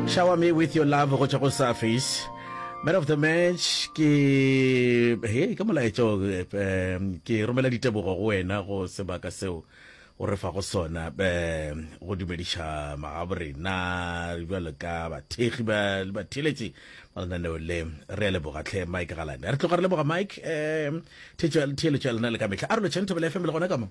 Shower me with your love go tšwa go surface man of the match ke he ke molaetša o, em, ke romela ditebogo go wena go sebaka seo o re fa go sona em, go dumediša magabo rena bjalo ka bathekgi ba le batheletši ba lenaneo le re a leboga tlhe mike galane re tloga re leboga mike um theeletšo ya lena le ka mehla a re lotšheng thobela fm le gona ka mo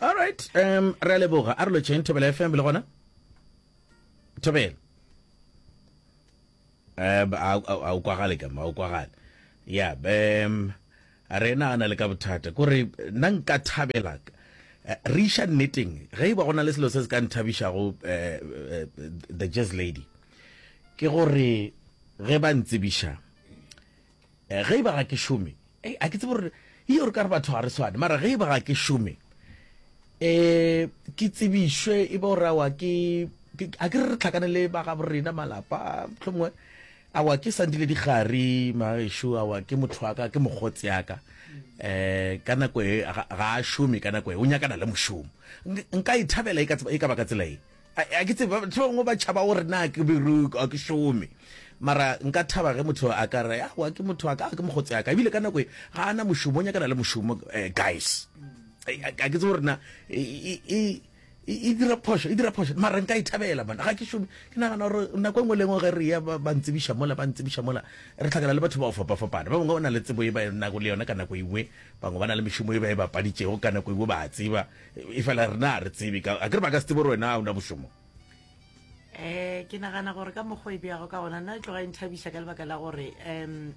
all right um re a leboga a re lotšheng thobela fm le gona thobela um a o kwagale kama a o kwagale ya um rena a na le ka bothata kore nna nka thabela eh, re iša nneteng ge e ba go na le selo se se ka nthabišago um eh, eh, the jazz lady ke gore ge ba ntsebiša Eh, ge e ba ga ke šome, eh, a ke tsebe gore e gore ka re batho ga re swane, mara ge e ba ga ke šome, eh, ke tsebišwe e ba gore awa ke a ke re re tlhakane le ba ga borena malapa tlhomongwe awa ke sandile digari magesho awa ke motho wa ka ke mogotse ya ka um ka nako e ga a šome ka nako e o nyakana le mošomo nka e thabela e ka e baka tsela e a ke tseba batho bangwe ba tšhaba gore na ke beroko a ke šome mara nka thaba ge motho a ka re awa ke motho a ka ke mogotse aka ebile ka nako e ga ana mošomo o nyakana le mošomo eh, guys a ke tse gore na e, e, e dira phoso e dira phoso mara nka e thabela mana ga ke šome ke nagana gore nako engwe lengwe ge re ya ba ntsebiša mola ba ntsebiša mola re tlhakana le batho ba go fapafapana ba bangwe ba na le tsebo e ba nako le yone ka nako engwe bangwe ba na le mešomo e ba e bapaditšego ka nako engwe ba tseba e fela rena re tsebe ka a ke re ba ka se tsebo gore wena o na bošomo eh ke nagana gore ka mokgwa e beago ka gona nna e tloga e nthabisa ka lebaka la gore um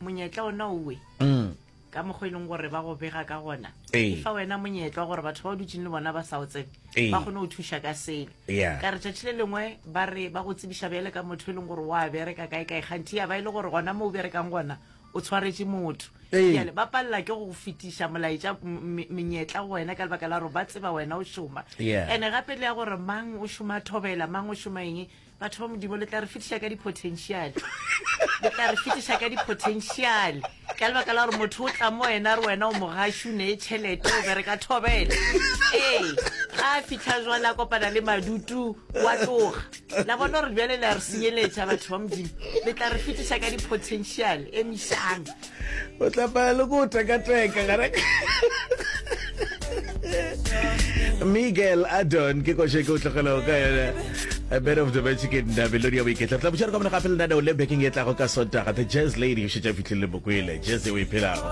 monyetla ona owe mm. ka mokgwa e leng gore ba go bega ka gona e fa wena monyetla gore batho ba o dutseng le bona ba sa o tsebe ba kgone go thuša ka selo ka re tšatši le lengwe ba re ba go tsebiša bjale ka motho e leng gore wa bereka kae kae kganthi ya ba e le gore gona mo o berekang gona o tshwaretše motho Ee. Bjale ba palela ke go fetiša molaetša m- m- menyetla go wena ka lebaka la gore ba tseba wena o šoma Yeah. ene gape le ya gore mang o šoma thobela mang o šoma eng batho ba modimo le tla re fetiša ka di-potential le tla re fetiša ka di-potential ka lebaka la gore motho o tla mo wena a re wena o mogashu ne e tšhelete o bereka thobela ee ga a fitlha jwale a kopana le madutu wa tloga la bona gore bjale le a re senyeletša batho ba modimo le tla re fetiša ka di-potential e mešang o tlapaya le ko tekateka gare miguel adon ke koše ke o tlogelago ka yone a bed of the magic in da melodi ya boiketla tla botšare ka mona gape lenaneo le bekeng e tlago ka sotaga the jazz lady o šetša fitlhelele mokwele jazz e o e phelago